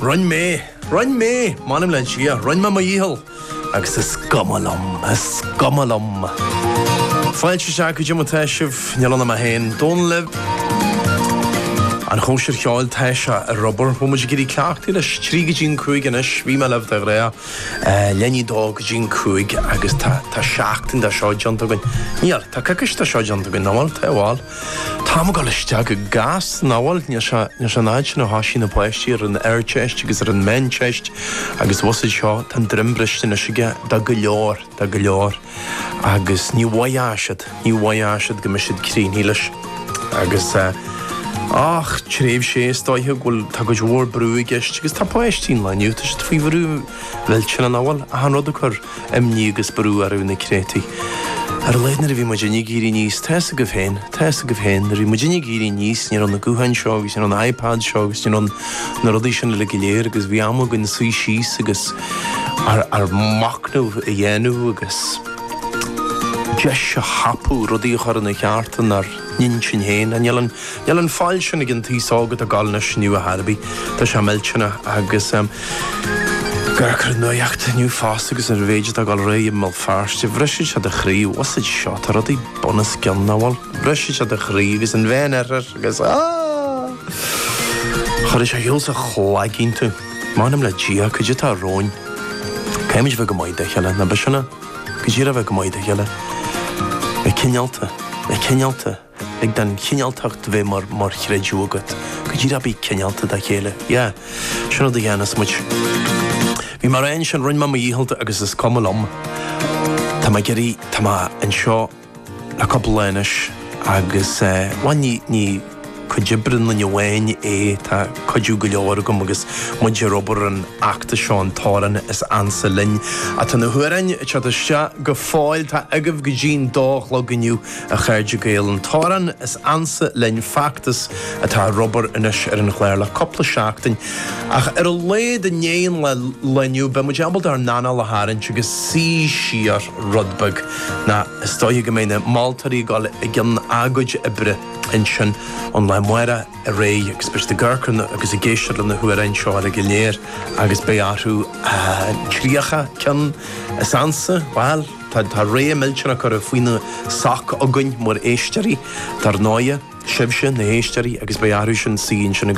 Rinn mé! Rinn mé! M'anam le an sia, rinn mé mo dhícheall! Agus is cuma liom, is cuma liom! Fáilte isteach cad é mar atá sibh, tráthnóna maith achan duine agaibh. An chóisir cheoil tá sé ar obair, bhfuil muid ag éirí cleachtaí leis trí go dtí'n cúig anois, bhí mé libh de ghnáth leanaí dó go dtí'n cúig agus tá seachtain de seo déanta againn. Níl, tá coicís de seo déanta againn, nach bhfuil? Tá, bhuel. Tá an t-am ag dul isteach go gasta, nach bhfuil. Níl sé an fad sin ó thosaigh na páistí ar an Ardteist agus ar an Mheánteist agus bhus iad seo, tá an droim briste anois aige dá go leor, dá go leor agus ní bheidh sé i bhfad, ní bheidh sé i bhfad go mbeidh siad críochnaithe leis. Agus ach tréimhse is dóiche go bhfuil, tá go leor brú i gceist agus tá páistí an lae inniu, tá siad faoi bhrú mhillteanach, nach bhfuil, achan rud ag cur. Imní agus brú orthu na créatúir. Ar a laghad nuair a bhí muidinne ag éirí aníos, tá's agaibh féin, tá's agaibh féin, nuair a bhí muidinne ag éirí aníos ní raibh na gutháin seo agus ní raibh na iPads seo agus ní raibh na rudaí sin uilig go léir agus bhí am againn suí síos agus ár machnamh a dhéanamh agus deis a thapú, rudaí a chur ina gceart, inár. n-intinn féin, níl, níl an fhaill sin ag an t-aos óg atá ag gabháil anois inniu a Harvey. Tá sé millteanach agus ag amharc ar an nuaíocht inniu fosta agus an méid atá ag dul ar aghaidh i mBéal Feirste, bhrisfeadh sé do chroí, usaid seo, tá rudaí bunoscionn, nach bhfuil, bhrisfeadh sé do chroí agus an bhean ar ar agus aah! Chuirfeadh sé heol sa chlagín tú, m'anam le Dia, cad é atá romhainn. Caithfimid a bheith go maith dá chéile, na biseanna? Go díreach a bheith go maith dá chéile. A, cineálta, a, cineálta, agus an chineáltacht a bheith mar, mar chreideamh agat. Go díreach a bheith cineálta dá chéile. Yeah. Sin an rud a dhéanfas muid. Bhí mé ag rá ansin, rinn mé mo dhícheall agus is cuma liom. Tá mé ag éirí, tá mé anseo. le cúpla lá anois agus, bhuel, ní, ní cuid oibre aon duine amháin é, tá cuidiú go leor agam agus muid ar obair ar an fheachtas seo, an t-amhrán is ansa linn. Á, tá na hamhráin ag teacht isteach go fóill, tá agaibh go dtí an dó a chlog inniu, a chairde Gael, an t-amhrán is ansa linn, feachtas atá ar obair anois ar an chlár le cúpla seachtain. Ach ar a laghad i ndiaidh an lae inniu, beidh muid ábalta ár n-anáil a tharraingt agus suí siar. rud beag, nó is dóiche go mbeidh na moltóirí ag dul i gcionn a gcuid oibre ansin ón lá amárach ar aghaidh agus beidh siad ag amharc agus ag éisteacht le na hamhráin seo uilig go léir agus beidh orthu tríocha ceann is ansa, bhuel, tá réimse millteanach curtha faoina soc againn mar éisteoirí, dar ndóighe, sibhse, na héisteoirí, agus beidh orthu sin suí ansin agus.